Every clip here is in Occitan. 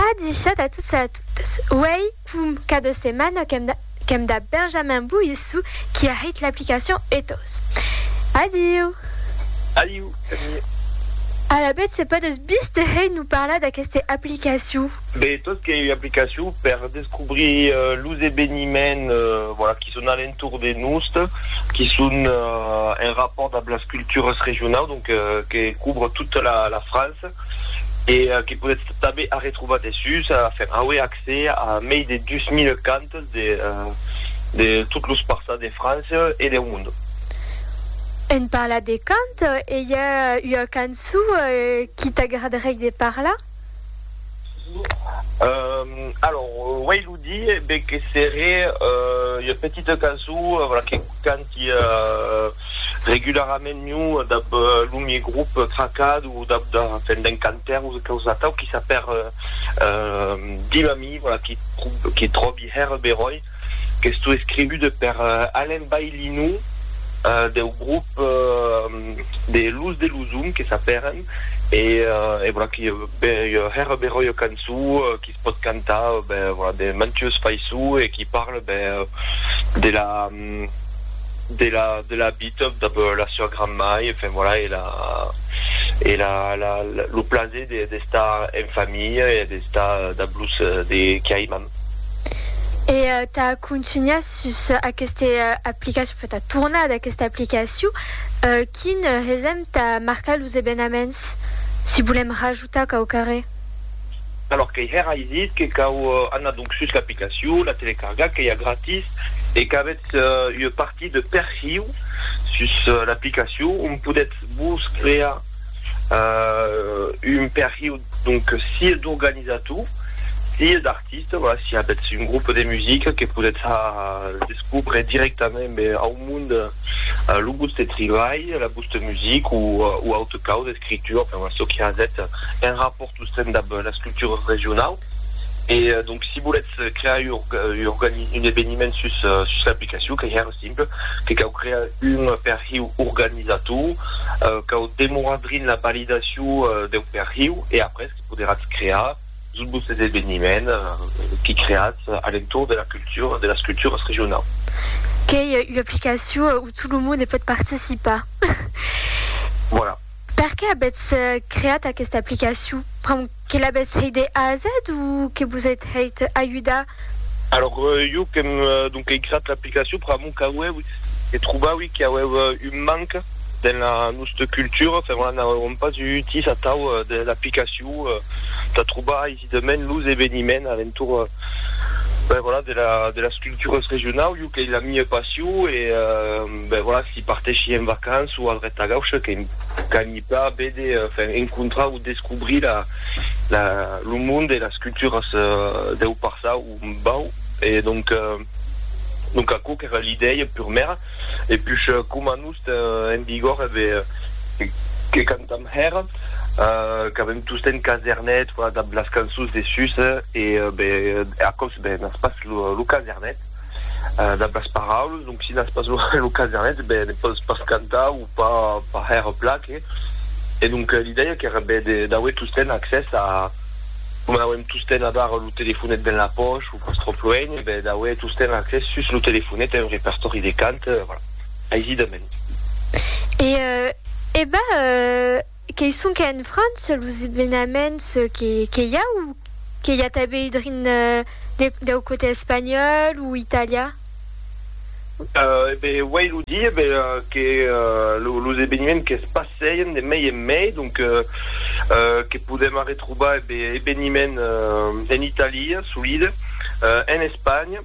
A dichat a tots e a totas, uèi com cada setmana qu'èm dab Benjamin Boissou qui a hèit l'aplicacion ethos. Adiu! Adiu, Camille! Alavetz se pòdes viste hèit nous parlar d'aqueste aplicacion? Be, tot qu'ei ua aplicacion per descobrir los eveniments voilà qui son a l'entorn de nost, qui son en rapport dab las cultures regionaus, donc que couvre tota la France. e que podètz tanben arretrobar dessús a faire aué accès a mei de 2000 cantes de de tot los parças de França e deu monde. En parlat de cant, e i a ua cançó qui t'agradaréi de parlar? Alors, uèi lo di, ben que seré ua petita cançó, voilà, que canta qui regularament miu dab lo mie grup tracad o dab da fèn d'un cantaire o de caus atau qui s'a per dil a mi voilà qui qui tròbi hèr beròi qu'estó escribude per Alain Baillinou deu grup de Luz de Luzum que s'a peren e e voilà qui hèr beròi ua cançó qui se pòt cantar ben voilà de mantues faisó e qui parle ben de la de la de la bitob dab la sua grandmai enfin voilà e la e la la lo plaser de d'estar en familha e d'estar dab los de qui aiman. E tà contunhar sus aqueste aplicacion, enfin tà tornar d'aquesta aplicacion, quin hesèm tà marcar los evenaments si volèm rajustar? Tà cau carrer. Alòr qu'ei hèr ai dit que cau anar donc sus l'aplicacion, la telecarga qu'ei a gratis e qu'avètz ua partit de perhiu sus l'aplicacion ont podètz vos crear un perhiu donc sia d'organizator sia d'artista, voilà, si avètz un grup de musica que podètz descobre directament au monde lo vòste tribalh, la vòsta. de music o o aute cau d'escritura per la soc hazet en rapòrt o sen dab las cultures regionau e donc si boletz crear ur organi un eveniment sus sus l'aplicacion qu'ei hèr simple que cau crear un perhiu organizator cau demorar drin la validacion deu perhiu e après que poderatz crear Sus vos es eveniment que creatz a l'entorn de la cultura, de las culturas regionaus. Qu'ei ua aplicacion où tot lo monde pòt participar. Voilà. Per qué avètz creat aquesta aplicacion? Pr'amor que l'avètz hèit de A a Z o que vos êt hèit ajudar? Alors, jo qu'èm donc ei creat Explicacion, pr'amor qu'aueu e trobaui qu'i aueu un manc dens la nosta cultura, fermant n'auèron pas utís atau de l'aplicacion tà trobar aisidament los eveniments alentor, ben voilà, de las cultures regionau, jo qu'ei la mia passion e, ben voilà, si parteshi en vacances o al Retagauche, que m'canhi pas vede, enfin, encontrar o descobrir la, la, lo monde e las culturas deu passau. Bau, e donc, donc aquò qu'èra l'idèia purmèra, e puish coma nos ten en vigor ebe que cantam hèra, qu'avem tostemp casernet, voilà dab las cançons de sus, e be aquò's ebe n'as pas lo casernet dab las paraules, donc si n'as pas lo casernet ebe ne pòs pas cantar o pas hèra plan que, e donc l'idèia qu'èra ebe d'auer tostemp accès a, Coma n'auem tostemps abar lo telefonet ben la pòch, o pas tròp luenh, e ben d'auer tostemps accès sus lo telefonet a un repertòri de cant, voilà, aisidament. E e ben, qu'ei sonque en França los evenaments que i a, o que i a tanben drin deu cotè espanhòl o italian? E ben, uèi lo di, e ben, que los eveniments que's passèien de mei en mei, donc, que podèm arretrobar, e ben, eveniments en Italia, solide, en Espanha,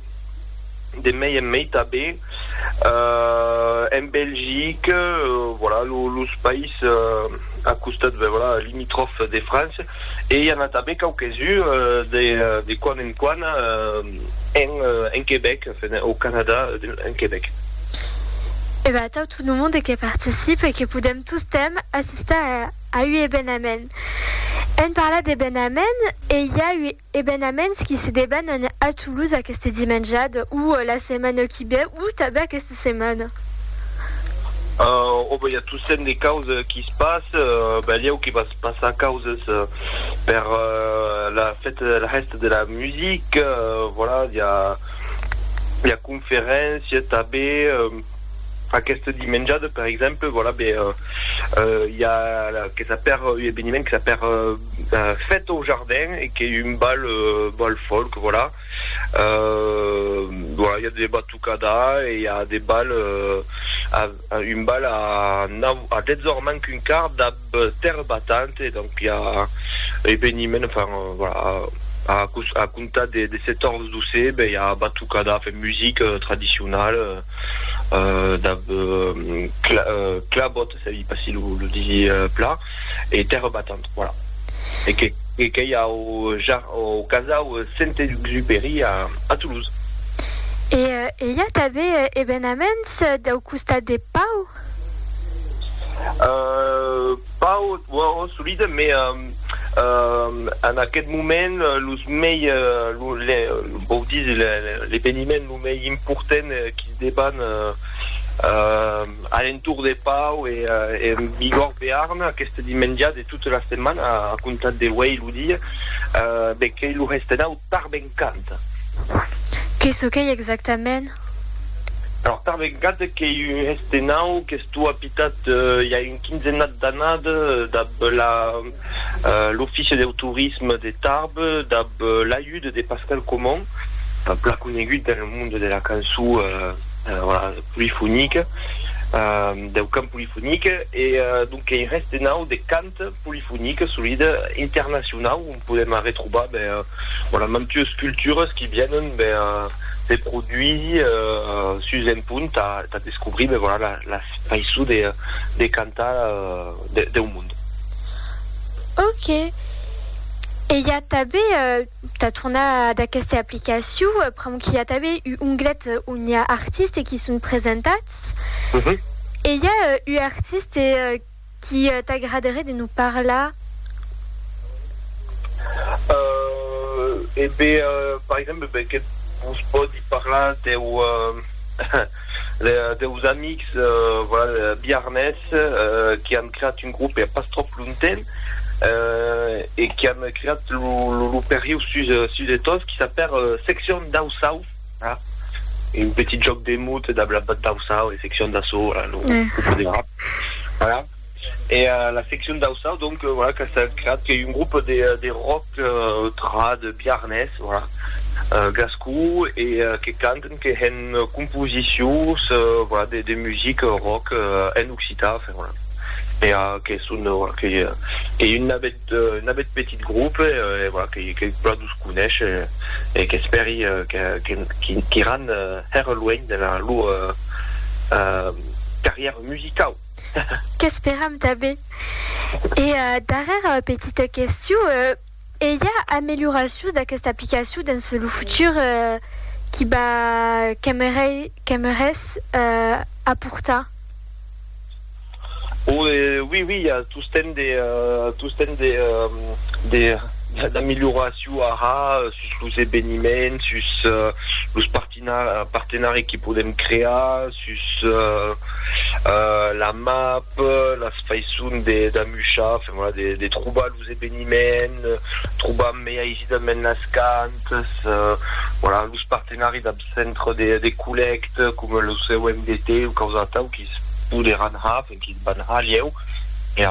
de mei en mei tanben, en Belgique, voilà, los païses a costat, ben, voilà, limitròfes de França. e i a anat tanben quauques uns de de quan en quan en en Quebec, enfin au Canada en Quebec. E ben atau tot lo monde que participe e que podem tostemp assistar a ua ebenament. Èm parlat d'ebenament e i a ua. Ebenaments qui se debanan a Toulouse aqueste dimenjada, o la setmana qui ve, o tanben aquesta setmana. Ò, ben, i a tossent de causes qui se passe, belieu que va se passar causes per la fête de la hèsta de la musique, voilà, i a, i a conferéncia tanben. Aqueste dimenjade, per exemple, voilà, be, euh, i a que s'apèr un eveniment que s'apèr Fête au jardin e qu'ei un bal, bal folk, voilà. Euh, voilà, i a de batucada e i a de bal, un bal a nau, a 10 ors manc un quart dab. Terre battante, donc i a eveniment, enfin voilà, a comptar de 14 d'ocebe i a batucada, enfin music tradicional, dab clabot, sabi pas si lo disi plan, e terre battante, voilà. E qu'ei au casau Saint-Exupéry a Toulouse. E i a tanben evenaments dau costat de Pau? Pas ò solide, mais en aquest moment los mei, vòu dire l'eveniment lo mei important qu'i deban a l'entorn de Pau e en Bigòrd Bearn aquest dimenja de tota la setmana a comptar de uèi lo dia, ben qu'ei lo Restenau Tarbèn. Kant. Que çò qu'ei exactament? Alòrs, tanben Kant qu'ei un hèste nau qu'estó apitat i a un quinzenat d'anat dab l'Offici deu Torisme de Tarbes dab l'ajut de Pascal Comon, plan conegut dens lo monde de la cançó polifonique, deu cant polifonique, e donc qu'ei un hèste nau de Kant. polifonica solida internacionau ont podèm arretrobar ben voilà mantues culturas qui vienen ben se produir sus un punt tà tà descobrir ben voilà la la faiçon de de cantar de deu mond. Ok. E i a tanben tà tornar ad aquesta aplicacion pr'amor qu'i a tanben u onglet on i a artistes qui son presentats e i a u artiste Qu'i t'agraderé de nous parlar? Euh, e be, par exemple, be que vos pòdi parlar deu, deus amics, voilà, biarnés, qu'i an creat un grop pas tròp lonten, e qu'i an creat lo, lo, lo perriu sus, sus de Tos, qu'i s'apèr Seccion dau Sauv. e un petit jòc de mot dab la bat d'Aussau, la seccion d'Assau, voilà, lo grup de rap, voilà, e la seccion d'Aussau, donc, voilà, qu'a estat creat, qu'ei un grup de de rock trad biarnés, voilà, gascon, e que canten, que hèn composicions, voilà, de de music rock en occitan, enfin, voilà, e que son, voilà, qu'ei un navèth. d'un abet petit grope e voilà que que plan nous conesh e qu'espèri que que qu'iran hèr luènh de la lor carrièra musicau. Qu'esperam tanben. E darrèra petita question, e i a amelioracions d'aquesta aplicacion dens lo futur qui va qu'aimerais aportar? Oi, oi, oi, i a tostemp de, tostemp de, de, d'amilhoracion ara sus los eveniments, sus los partina, partenari que podem crear, sus la map, las faisons de, d'amuchar, enfin, voilà, de, de trobar los. los eveniments, trobam mei aisidament las cantas, voilà, los partenari dab centre de de collècte coma lo COMDT o quaus atau quis poderàn har, enfin quis van har lieu e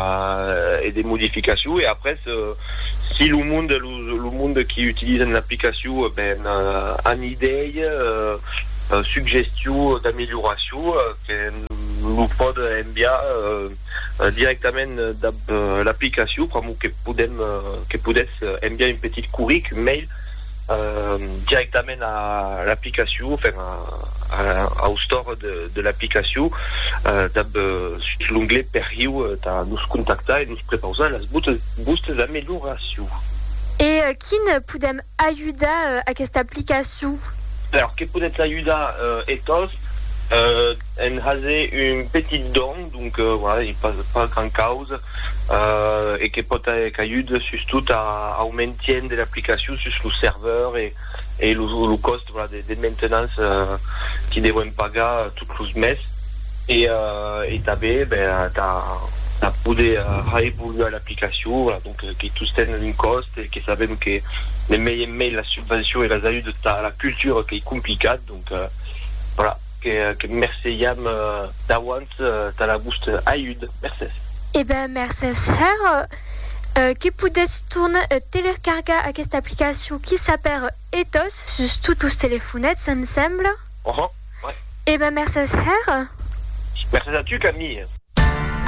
e de modificacion e après si lo monde e los lo monde qui utilisen l'aplicacion ben an idei, suggestion d'amelioracion que lo pòde enviar. directament dab l'aplicacion pr'amor que podem que podètz enviar un petit curric mail directament a l'aplicacion enfin au store de l'aplicacion dab sus l'onglet perriu tà nos contactar e nos prepausar las vostes amelioracions. E quin podem Ajudar aquesta aplicacion. Per que podètz ajudar e tos en haser un petit don, donc pas gran causa e que pòt qu'ajude sustot au maintien de l'aplicacion sus lo serveur e lo còst de maintenance que devèm pagar tot los mes e tanben tà poder reevoluar l'aplicacion. que tosten un còst e que sabèm que de mei en mei las subvencions e las ajudes tà la cultura qu'ei complicat, donc voilà, que merceiam d'auant tà la vòsta ajud. Mercés. E ben, mercés hèr que podètz tornar e telercargar aquesta aplicacion qui s'apèr Ethos sus tots los telefonets, em sembla. Uhum, ouais. E ben, mercés hèr. Mercés a tu, Camille.